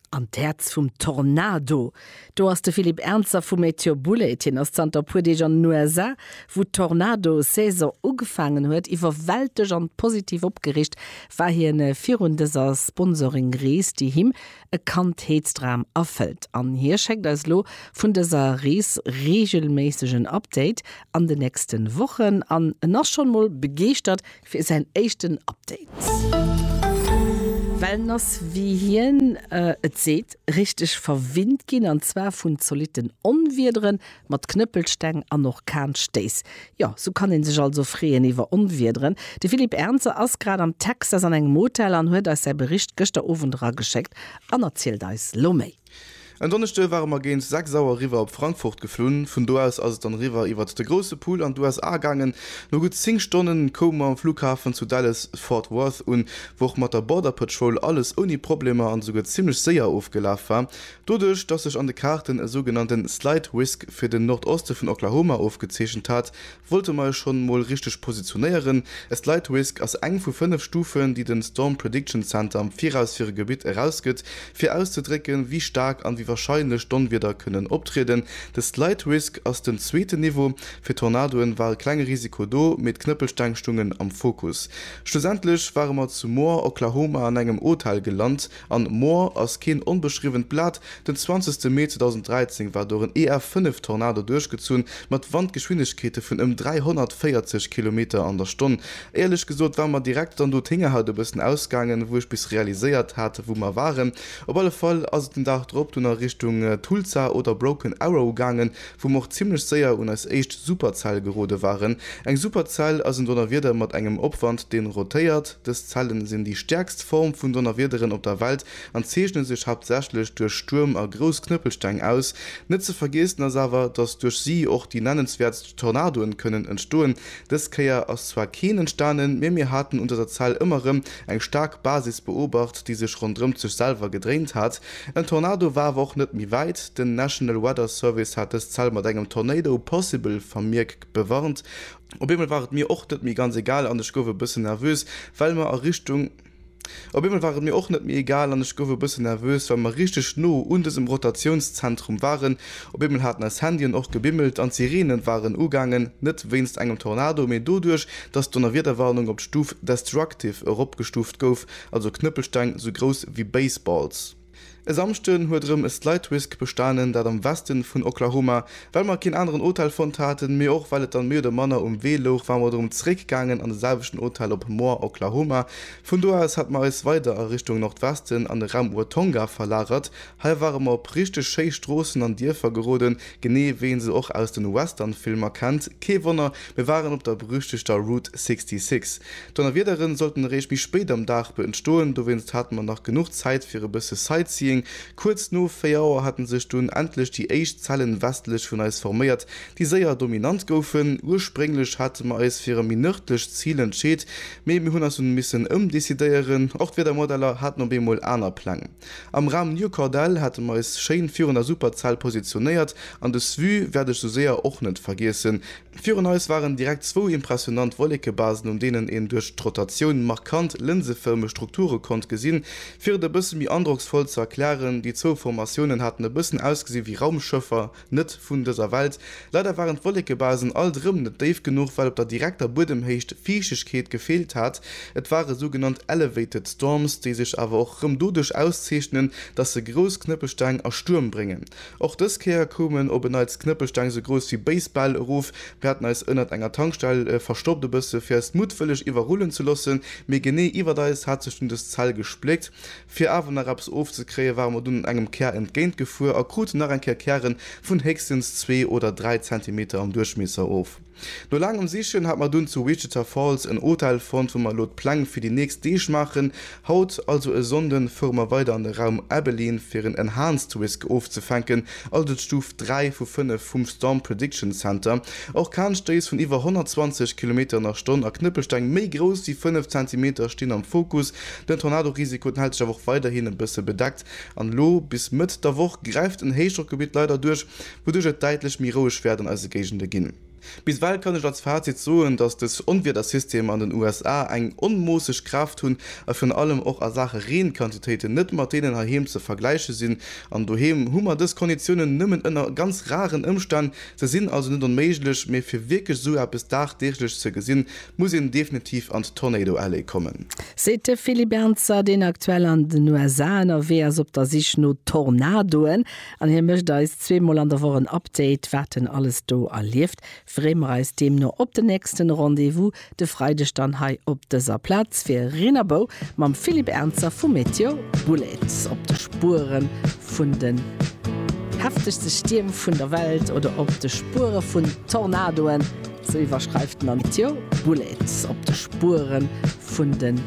An d'Häerz vum Tornado, do ass de Philippe Ernzer vu Meteor Bullet. Hien ass zanter e puer Deeg an den USA, wou d'Tornado-Saison ugefaangen huet. Iwwerwältegt an positiv opgeriicht war hien virun dëser Sponsoring-Rees, déi him e Kandheetsdram erfëllt. An hie schéckt eis elo vun dëser Rees reegelméisseg en Update an den nächste Wochen. An en ass schonn emol begeeschtert, fir säin éischten Update. Well en ass, wéi hien et seet, richteg verwinnt ginn, an zwar vun zolitten Onwiedere mat Knëppelsteng an Orkanstéiss. Jo, sou kann ee sech also freeën iwwer Onwiederen. De Philippe Ernzer ass grad am Texas an engem Hotel an huet eis säi Bericht gëschter Owend erageschéckt an erzielt eis lo méi. En Donneschde ware mer géint 6 Auer riwwer op Frankfurt geflunn. Vun do aus ass et dann riwwer iwwert de Grousse Pool an d'USA gaangen. No gutt 10 Stonne koume mer am Flughafen zu Dallas Fort Worth un, wou och mat der Border Patrol alles ouni Problemer an esouguer zimmlech séier ofgelaf war. Doduerch, dass sech an de Kaarten e sougenannte Slight Risk fir den Nordoste vun Oklahoma ofgezeechent hat, Wollte mer e schonn mol richteg positionéieren. E Slide Risk ass eng vu fënnef Stufen, déi den Storm Prediction Center am Viraus fir e Gebitt erausgëtt, fir auszedrécken, wéi staark an wéi warscheinlech Donwieder kënnen optrieden. De Slide Risk ass den zweeten Niveau. Fir Tornadoen war e klenge Risiko do, mee d'Knëppelsteng stungen am Fokus. Schlussendlech ware mer zu Moore, Oklahoma an engem Hotel gelant. An moar ass keen onbeschriwwent Blat. Den 20 Mee 2013 war dor en EF 5 Tornado duerchgezunn, mat Wandgeschwindegkeete vun ëm 340 Kilometer an der Stonn. Éierlech gesot war mer direkt dann do d'Héngerhaut e bëssen ausgaangen, wou ech bis realiséiert hat, wou mer waren. Op alle Fall ass et den Dag drop dunn a Richtung Tulsa oder Broken Arrow gaangen, wou mer och zimmlech séier un eis éischt Superzell gerode waren. Eng Superzell ass en Donnerwieder mat engem Opwand, deen rotéiert. Dës Zellen sinn déi stäerkst Form vun Donnerwiederen op der Welt an zeechne sech haaptsächlech duerch Stuerm a grouss Knëppelsteng aus. Net ze vergeessen ass awer, dass duerch si och déi nennenswäertst Tornadoen kënnen entstoen. Dës Kéier ass zwar keen entstanen, mee mir haten un dëser Zell ëmmer rëm eng staark Basis beobacht, déi sech ronderëmt sech selwer gedréint hat. En Tornado war awer och net méi wäit. Den National Weather Service hat dës Zell mat engem Tornado possible Vermierk bewarnt. Op eemol war et mir och net méi ganz egal an ech gouf e bëssen nervös, well mer a Richtung. Op eemol war et mir och net méi egal an ech gouf e bëssen nervös, well mer richteg no un dësem Rotatiounszentrum waren. Op eemol haten eis Handyen och gebimmelt an d'Sireenen waren ugaangen, net wéinst engem Tornado, mee doduerch, dass d'Donnerwiederwarnung op d'Stuf Destructive eropgestuuft gouf, also Knëppelsteng sou grouss wéi Baseballs. E Samschden huet erëm e Slidewhisk bestanen, dat am Westen vun Oklahoma. Well mer keen aneren Hotel fonnt haten, mee och well et dann méi oder manner um Wee louch, ware mer erëm zeréck gaangen an de selwechten Hotel op Moore, Oklahoma. Vun do aus hat mer eis weider a Richtung Nordwesten an de Raum Watonga verlagert Hei ware mer op richteg schéi Stroossen an Dierfer geroden, genee wéi een se och aus den Western-Filmer kennt. Kee Wonner, mir waren op der berüchtegter Route 66. D'Donnerwiederen sollten eréischt méi spéit am Dag beëntstoen, dowéinst hate mer nach genuch Zäit fir e bësse Sightseeing. Kuerz no 4 Auer hate sech dunn endlech déi éischt Zellen westlech vun eis forméiert, déi séier dominant goufen. Ursprénglech hate mer eis fir e méi nërdlecht Zil entscheet, mee mir hunn eis dunn missen ëmdecidéieren. Och d'Wiedermodeller haten op eemol aner Pläng. Am Raum New Cordell hate mer eis schéin virun der Superzell positionéiert an des Vue wäert ech sou séier och net vergiessen. Virun eis waren direkt zwou impressionant Wollekebasen un deenen een duerch d'Rotatioun markant lënsefërmeg Strukture konnt gesinn. Fir et e bësse méi androcksvoll ze erklären, déi zwou Formatiounen haten e bëssen ausgesi wéi Raumschëffer, Net vun dëser Welt. Leider waren d'Wollekebasen alt erëm net déif genuch, well op der direkter Buedemhéicht Fiichtegkeet gefeelt hat. Et ware sougenannt elevated storms, déi sech awer och erëm doduerch auszeechnen, datt se grouss Knëppelsteng a Stuerm bréngen. Och dës Kéier koumen op en Neits Knëppelsteng sou grouss wéi Basebäll erof. Mir haten eis ënnert enger Tankstell verstoppt, e bësse fir eis muttwëlleg iwwerrullen ze loossen, mee genee iwwert eis hat sech dunn des Zell gespléckt. Fir awer nach eppes ofzekréien, ware mer dunn engem Kär entgéint gefuer a kruten nach eng Kéier Kären vun héchstens zwee oder dräi Zentimeter am Duerchmiesser of. No laangem Sichen hat mer dunn zu Wichita Falls en Hotel fonnt, wou mer elo d'Pläng fir déi nächst Deeg maachen. Haut, also e Sonnden, fuere mer weider an de Raum Abilene fir en Enhanced Risk ofzefänken, also d'Stuf 3 vu 5 vum Storm Prediction Center. Orkanstéiss vun iwwer 120 Kilometeren a Stonn a Knëppelsteng méi grouss wéi 5 Zentimeter stinn am Fokus Den Tornadorisiko, den hält sech awer och weiderhin e bësse bedeckt an elo bis Mëtt der Woch gräift en Héichdrockgebitt leider duerch, wouduerch et däitlech méi roueg wäert an eise Géigende ginn. Bis ewell kann ech als Fazit soen, dass dës Onwiedersystemer an den USA eng onmoosseg Kraaft hunn a virun allem och a Saache Reenquantitéiten net mat deenen heiheem ze vergläiche sinn an doheem hu mer dës Konditiounen nëmmen ënner ganz raren Ëmstänn. Se sinn also net onméiglech, mee fir wierklech esou eppes dagdeeglech ze gesinn, Muss een definitiv an d'Tornado Alley kommen. Seet de Philippe Ernzer, deen aktuell an den USA ënnerwee ass op der Sich no Tornadoen. An hie mécht eis zwee Mol an der Woch en Update, wat en alles do erlieft. Freeë mer eis deemno op den nächsten Rendez-vous de Freideg dann hei op dëser Plaz fir Rinnerbou mam Philippe Ernzer vu Météo Boulets op de Spuere vun den heftegste Stierm vun der Welt oder op de Spuere vun Tornadoen. Sou iwwerschreift den Antio Bullet op de Spueren vun den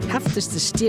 heftegste Stierm.